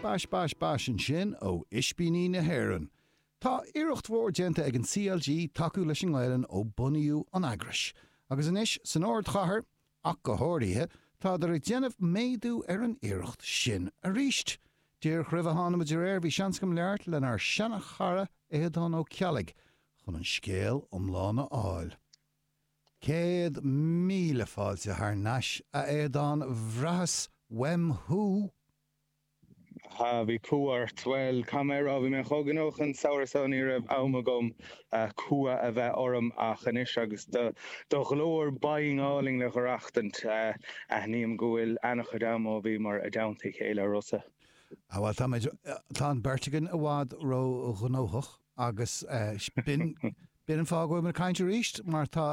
Bais, bais, bais ansin ó Ispíní na hÉireann. Tá iarracht mhór déanta ag an CLG tacú leis an nGaelainn ó bunaíodh an eagrais, agus anois san ardchathair ach go háirithe, táthar ag déanamh méadú ar an iarracht sin arís. Díreach roimh a thánamair ar aer bhí seans agam labhairt lenár seana-chara Aodán Ó Ceallaigh chun an scéal iomlán a fháil. Céad míle fáilte thar n-ais, a Aodáin. Bhraitheas uaim thú! Há, bhí cumha ort. Bhuel, caithfidh mé a rá, bhí mé chomh gnóthach an samhradh seo ní raibh am agam cumha a bheith orm ach anois agus do ghlór bhinn álainn le haireachtaint, aithním go bhfuil ana-chuid am ó bhíomar i dteannta a chéile, a Rossa. Há, bhuel, táimid, tá an beirt againn i bhfad ró-ghnóthach agus B'in an fáth a bhfuil mé ag caint arís, mar tá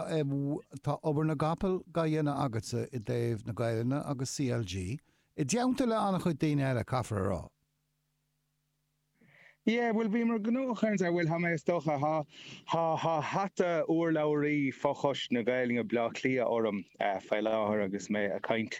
obair na gcapall dá dhéanamh agatsa i dtaobh na Gaelainne agus CLG, i dteannta le an-chuid daoine eile, caithfear a rá. Yeah, bhuel, bhíomar gnóthach ar a bhfuil, tá mé, is dócha, tá hata urlabhraí fochoiste na Gaelainne Bhleá Cliath orm faoi láthair agus mé ag caint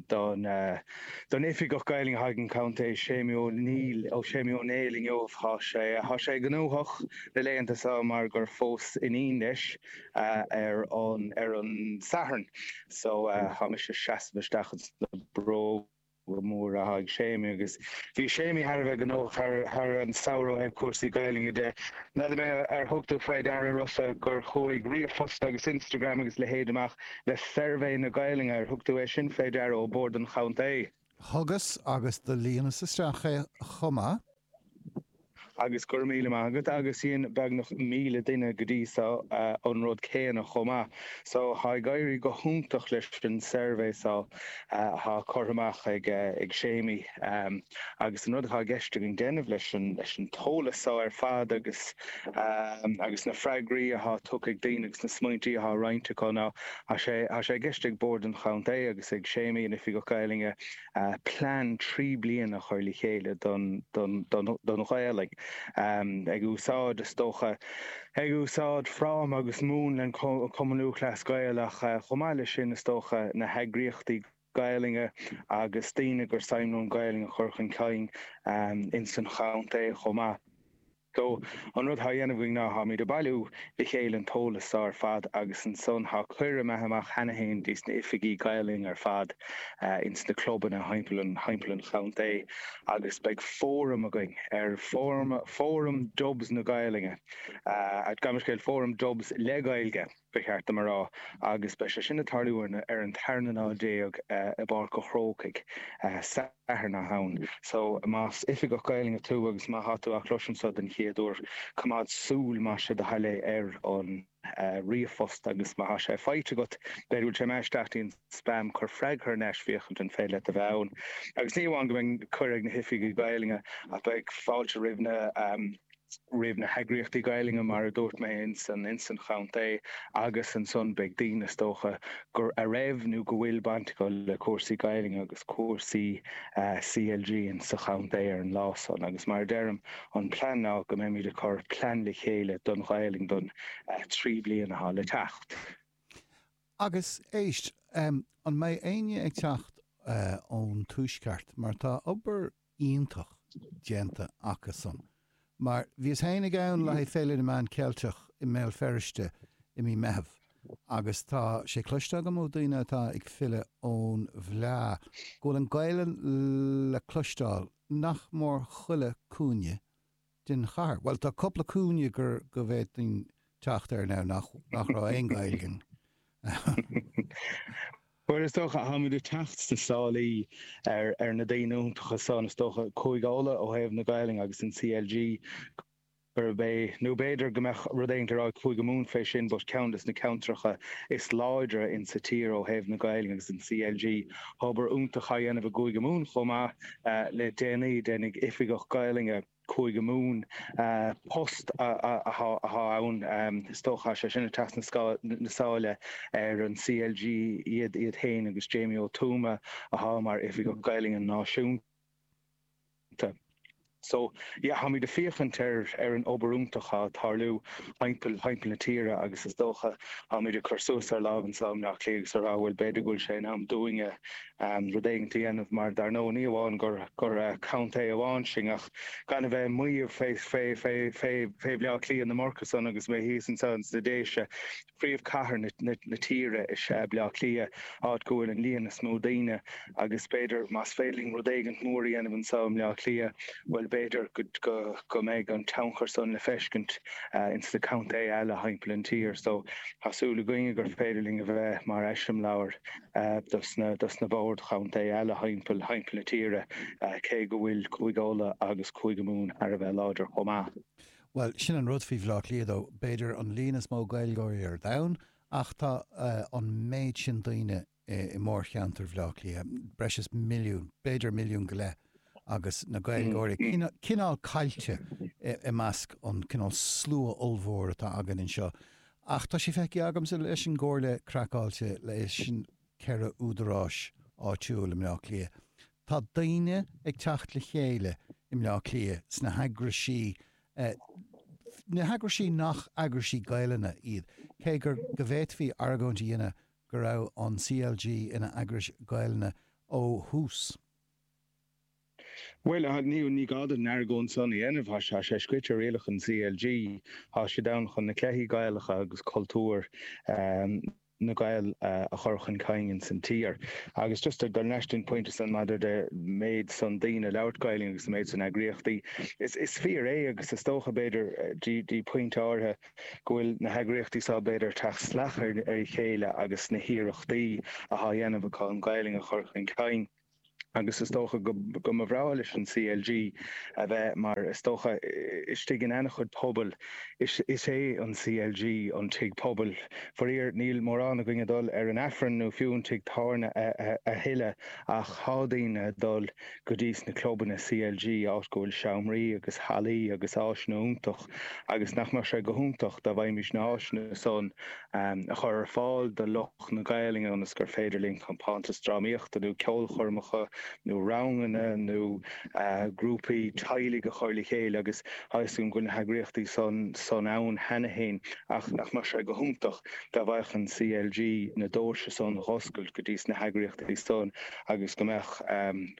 don Oifigeach Gaelainne atá ag an gContae Séimí Ó Néill, Séimí Ó Néill, inniu. Tá sé gnóthach. Na laethanta so mar gur phós iníon leis ar an Satharn so tá mise ag seasamh isteach ins na bróga móra atá ag Séimí agus bhí Séimí thar a bheith gnóthach thar an samhradh ar chúrsaí Gaelainne de. N'fheadar mé ar thug tú faoi deara Rossa gur chuaigh ríomhphost agus Instagram agus a leithéid amach le suirbhé na Gaelainne, ar thug tú é sin faoi deara, ó Bhord an Chontae? Thugas agus do líonas isteach é chomh maith. Agus go raibh míle maith agat. Agus dhein beagnach míle duine go dtí so an rud céanna chomh maith. So tá ag éirí go hiontach leis an suirbhé so atá curtha amach ag Séimí. Agus an rud atá i gceist againn déanamh leis an t-eolas so ar fad agus agus na freagraí atá tugtha ag daoine agus na smaointí atá roinnte acu ná tá sé i gceist ag Bord an Chontae agus ag Séimí, an Oifigeach Gaelainne, plean trí bliana a chur le chéile don Ghaelainn, ag úsáid, is dócha, ag úsáid fráma agus múnla an Chumann Lúthchleas Gael ach, chomh maith leis sin, is dócha, na heagraíochtaí Gaelainne agus daoine gur suim leo an Ghaelainn a chur chun cinn ins an chontae chomh maith. So, an rud thá á dhéanamh againn ná tháimíd a' bailiú le chéile an t-eolas so ar fad agus ansan thá cuireadh imithe amach cheana fhéin dos na h-oifigigh Gaelainne ar fad ins na clubanna thimpeall an chontae agus beidh fóram againn ar Fóram Dubs na Gaelainne, a' gabh mo leithscéal, Fóram Dubs le Gaeilge. ba cheart dom a rá, agus beidh sé sin ag tarlú ar an tarna lá déag i bPáirc a' Chrócaigh, Satharn is ea é sin. So, más Oifigeach Gaelainne tú agus má tá tú á chloisint seo den chéad uair, coimeád súil, más é do thoil é, ar an ríomhphost agus má tá sé faighte agat, b'fhéidir go bhfuil sé imithe isteach i an spam, cuir freagra thar n-ais, féachaint an féidir leat a bheith ann. Agus ní amháin go mbeidh cuireadh ag na hOifigigh Ghaelainne ach beidh fáilte roimh na. roimh na heagraíochtaí Gaelainne, mar a dúirt mé, ins an chontae, agus ansan beidh daoine, is dócha, gur, a raibh nó go bhfuil baint acu le cúrsaí Gaelainne agus cúrsaí CLG ins an chontae ar an lá san. Agus mar a deirim, an plean ná go mbeimid ag cur plean le chéile don Ghaelainn don trí bliana atá le teacht. Agus, éist, an mbeidh éinne ag teacht ón Tuaisceart, mar tá obair iontach déanta acusan. Mar bhíos féin ag, ann le haghaidh Féile na Meán Ceilteacha i mBéal Feirste i mí Meitheamh agus tá sé cloiste agam ó daoine atá ag filleadh ón bhfleá go bhfuil an Gaelainn le cloisteáil nach mór chuile cúinne den chathair. Bhuel, tá cupla cúinne gur, go bhféadfainn teacht air now nach, nach raibh aon Ghaeilge iontu. Bhuel, is dócha, táimid ag teacht sna sálaí ar, ar na daoine iontacha san, is dócha, Cúige Uladh ó thaobh na Gaelainne agus an CLG gurb é, nó b'fhéidir go mbeadh rud éigint le rá ag Cúige Mumhan fé sin but ceann de na ceantracha is láidre in sa tír ó thaobh na Gaelainne agus an CLG, obair iontach á dhéanamh i gCúige Mumhan chomh maith. Le déanaí, d'éinne, Oifigeach Gaolainne Chúige Mumhan, post atá ann is dócha, sé sin, ag teacht sna sála ar an CLG, iad iad féin agus Jamie Ó Tuama atá mar Oifigeach Gaolainne Náisiúnta. So, yeah, táimid ag féachaint ar an obair iontach atá ag tarlú thimpeall na tíre agus is dócha táimid ag cur suas ár lámha anso i mBleá Cliath agus a rá, bhuel, b'fhéidir go bhfuil sé in am dúinne rud éigint a dhéanamh, mar dar ndóigh ní amháin gur contae amháin sinn ach gan a bheith ag maíomh fé Bhleá Cliath ná mórtasach agus mé thíos anseo ins na Déise. Príomhchathair na tíre is ea Bleá Cliath, áit go bhfuil an líon is mó daoine agus b'fhéidir más féidir linn rud éigint mór a dhéanamh anseo i mBleá Cliath, bhuel b'fhéidir go mbeidh an tionchar san le feiscint ins na contaethe eile thimpeall an tír so tá súil againne gur féidir linn a bheith mar eiseamláir. do sna boird chontae eile thimpeall na tíre, cé go bhfuil Cúige Uladh agus Cúige Mumhan thar a bheith láidir chomh maith. Bhuel, sin an rud faoi Bhleá Cliath dó, b'fhéidir an líon is mó Gaeilgeoirí ar domhan, ach tá an méid sin daoine i mórcheantar Bhleá Cliath, breis is milliún, b'fhéidir milliún go leith. agus na Gaeilgeoirí cineál caillte i measc an cineál slua ollmhór atá againn anseo. Ach tá sé feicthe agamsa leis an gComhairle Craiceáilte, leis an ceithre údaráis áitiúil i mBleá Cliath, tá daoine ag teacht le chéile i mBleá Cliath sna heagrais, na heagrais nach eagrais Gaeilge iad, cé gur, go bhféadfaí argóint a dhéanamh go raibh an CLG ina eagrais Ghaelainne ó thús. Bhuel, a Neil, ní gá duit an argóint san a dhéanamh. Tá sé scríte i rialacha an CLG. Tá siad ann chun na cluichí Gaelacha agus cultúr na nGael a chur chun cinn ins an tír. Agus díreach leis an bpointe san maidir le méid san daoine ag labhairt Gaelainn agus an méid san eagraíochtaí, is fíor é agus is dócha b'fhéidir dtí pointe áirithe go bhfuil na heagraíochtaí seo b'fhéidir ag teacht salach ar a chéile agus na hiarrachtaí atá á dhéanamh acu an Ghaelainn a chur chun cinn. agus is dócha go mba bhreá leis an CLG a bheith, mar is dócha, istigh in an-chuid pobal. Is é an CLG an tigh pobail. Faraor, níl mórán againn ag dul ar an Aifreann nó fiú an tigh tábhairne a thuilleadh, ach tá daoine ag dul go dtís na clubanna CLG, áit go bhfuil seomraí agus hallaí agus áiseanna iontacha, agus nach mbeadh sé go hiontach dá bhféadfaimis na háiseanna san a chur ar fáil do lucht. na Gaelainne ionas gur féidir linn compántas drámaíochta nó ceolchoirmeacha nó ranganna nó grúpaí teaghlaigh a chur le chéile agus tá a fhios agam go bhfuil na heagraíochtaí san ann cheana féin ach nach mbeadh sé go hiontach dá bhféadfadh an CLG na doirse san dh'oscailt go dtís na heagraíochtaí san agus go mbeadh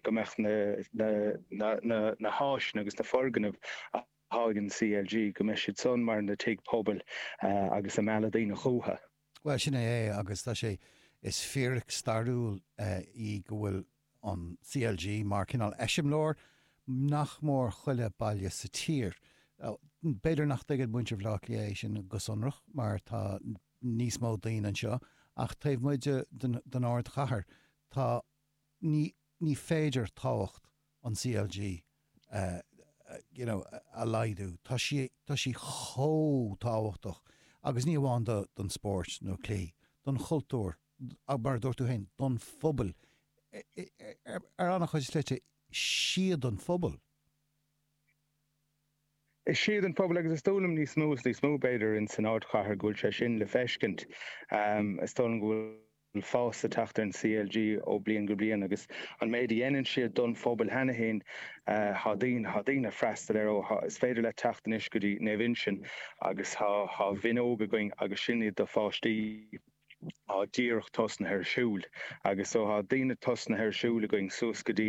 go mbeadh na na háiseanna agus na foirgnimh atá ag an CLG go mbeidh siad san mar na tigh pobail agus ag mealladh daoine chucu. Bhuel, sin é é agus tá sé, is fíric stairiúil í go bhfuil an CLG mar cineál eiseamláir nach mór chuile baile sa tír. B'fhéidir nach dtuigeann muintir Bhaile Átha Cliath é sin go sonrach mar tá níos mó daoine anseo ach taobh amuigh den ardchathair tá, ní féidir tábhacht. an CLG you know a laghdú. Tá sí, tá sí chomh tábhachtach, agus ní amháin do, don spóirt nó cluichí, don chultúr, ach mar a dúirt tú féin, don phobail, ar ana-chuid slite, is iad an pobal. Is iad an pobal, agus is dóigh liom níos mó is níos mó, b'fhéidir, in, san ardchathair go bhfuil sé sin le feiscint. Is dóigh liom go bhfuil. an fás atá ag teacht ar an CLG ó bhliain go bliain agus an méid a dhéanann siad don phobal cheana féin tá daoine ag freastal air so is féidir leat teacht anois go dtí Naomh Uinseann agus tá naíonra againn agus sin iad do pháistí á díreach tosnaithe ar siúl agus so tá daoine tosnaithe ar siúl againn suas go dtí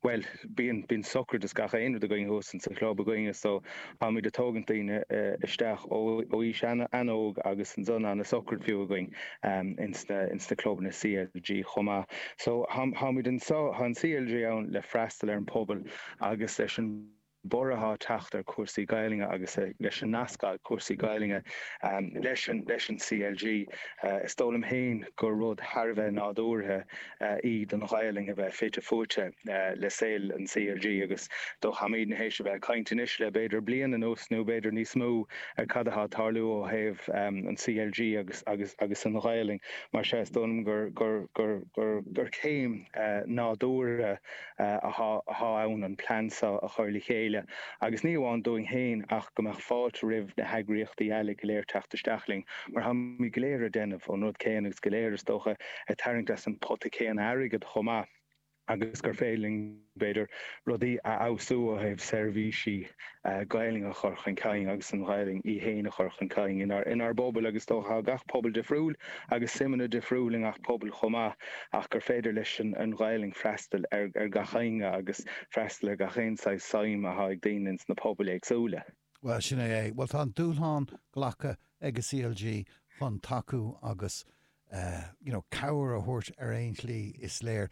bhuel bíonn bíonn sochraid is gach aon rud againn thuas in sa chlub againne so Táimid ag tógaint daoine isteach ó aois an-óg agus ansan an sochraid fiú againn in sna clubanna CLG chomh maith. So, táimid anseo, tá an CLG ann le freastal ar an pobal agus leis an borradh atá ag teacht ar cúrsaí Gaelainne agus leis an nascadh cúrsaí Gaelainne leis an CLG, is dóigh liom féin gur rud thar a bheith nádúrtha. í don Ghaelainn a bheith fite fuaite le saol an CLG agus so táimid tar éis a bheith ag caint anois le b'fhéidir bliain anuas nó b'fhéidir níos mó ar cad atá ag tarlú ó thaobh an CLG agus an Ghaelainn. Mar sea, is dóigh liom gur céim nádúrtha. atá ann an plean seo a chur le chéile, agus ní amháin dúinn féin ach go mbeadh fáilte roimh na heagraíochtaí eile go léir teacht isteach linn, mar táimid go léir ag déanamh an rud céanna agus go léir, is dócha, ag tarraingt as an phota céanna airgid chomh maith, agus gur féidir linn, b'fhéidir, rudaí a fheabhsú ó thaobh seirbhísí. Gaelainn a chur chun cinn agus an Ghaelainn í féin a chur chun cinn inár bpobail agus is dócha tá gach pobal difriúil agus suimeanna difriúil i ngach pobal chomh maith ach gur féidir leis an Ghaelainn freastal ar gach éinne agus freastal ar gach aon saghas suim atá ag daoine ins na pobail éagsúla. Bhuel, sin é é. Bhuel, tá an dúshlán glactha ag an CLG chun tacú agus, you know, cabhair a thabhairt ar aon tslí, is léir.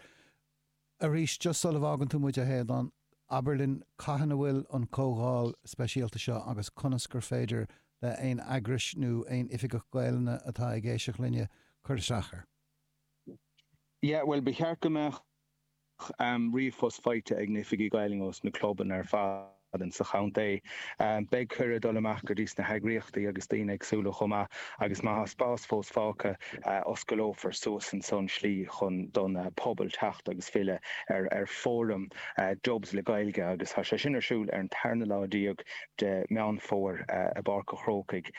Arís, just sula bhfágann tú muid, a Shéadhán, abair linn cathain a bhfuil an comhdháil speisialta seo agus conas gur féidir le haon eagrais nó aon Oifigeach Gaelainne atá ag éisteacht linne cur isteach air? Yeah, bhuel, ba cheart go mbeadh ríomhphost faighte ag na hOifigigh Gaelainne ós na clubanna ar fad. sa chontae. Beidh cuireadh ag dul amach go dtí sna heagraíochtaí agus daoine éagsúla chomh maith agus má thá spás fós fágtha, osclófar suas ansan an tslí chun don pobal teacht agus filleadh ar fóram Dubs le Gaeilge agus thá sé sin ar siúl ar an tarna lá déag de Meán Fómhair i bPáirc a' Chrócaigh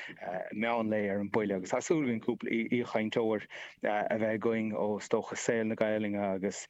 meán lae ar an bhuille agus thá súil againn cúpla aoichainteoir a bheith againn ó is dócha saol na Gaelainne agus.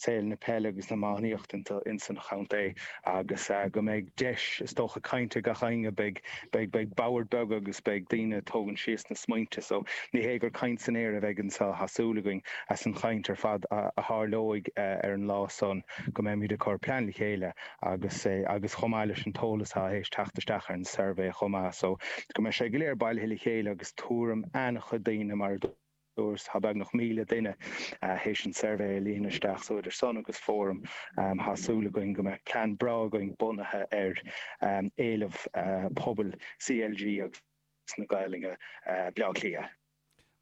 saol na peile agus na hiománaíochta ins an chontae agus go mbeidh deis, is dócha, cainte ag gach éinne. Beidh boird beaga agus beidh daoine ag tógaint síos na smaointe so. Ní hé gur caint san aer a bheidh anseo tha súil againn as an chaint ar fad a tharlóidh ar an lá san go mbeimid ag cur plean le chéile agus agus chomh maith leis an t-eolas athá ag teacht isteach ar an suirbhé chomh maith so go mbeidh sé go léir bailithe le chéile agus tuairim an-chuid daoine mar a Tá beagnach míle duine théis an tsuirbhé a líonadh isteach so idir san agus fóram tá súil againn go mbeadh plean breá againn bunaithe ar éileamh pobail CLG agus na Gaeilge Bhleá Cliath.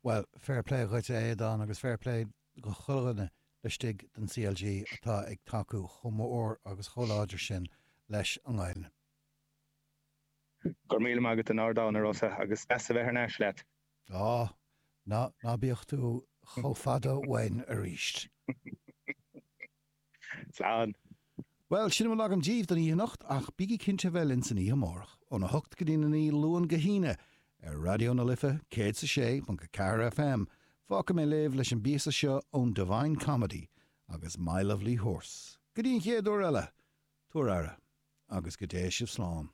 Bhuel, fair play dhuit a Aodáin agus fair play do chuile dhuine laistigh den CLG atá ag tacú chomh mór agus chomh láidir sin leis an nGaelainn. Go raibh míle maith agat an-ardán, a Rossa, agus deas a bheith thar n-ais leat. Á, ná bíodh tú chomh fada uainn aríst. Slán. Bhuel, sin a bhfuil agam díbh don oíche anocht, ach bígí cinnte a bheith linn san oíche amárach, óna hocht go dtí a naoi, Luan go hAoine, ar Raidió na Life, céad 's a sé ponc a ceathair FM. Fágfaidh mé libh leis an bpíosa seo ón Divine Comedy agus My Lovely Horse. Go dtí an chéad uair eile, tabhair aire, agus go dté sibh slán.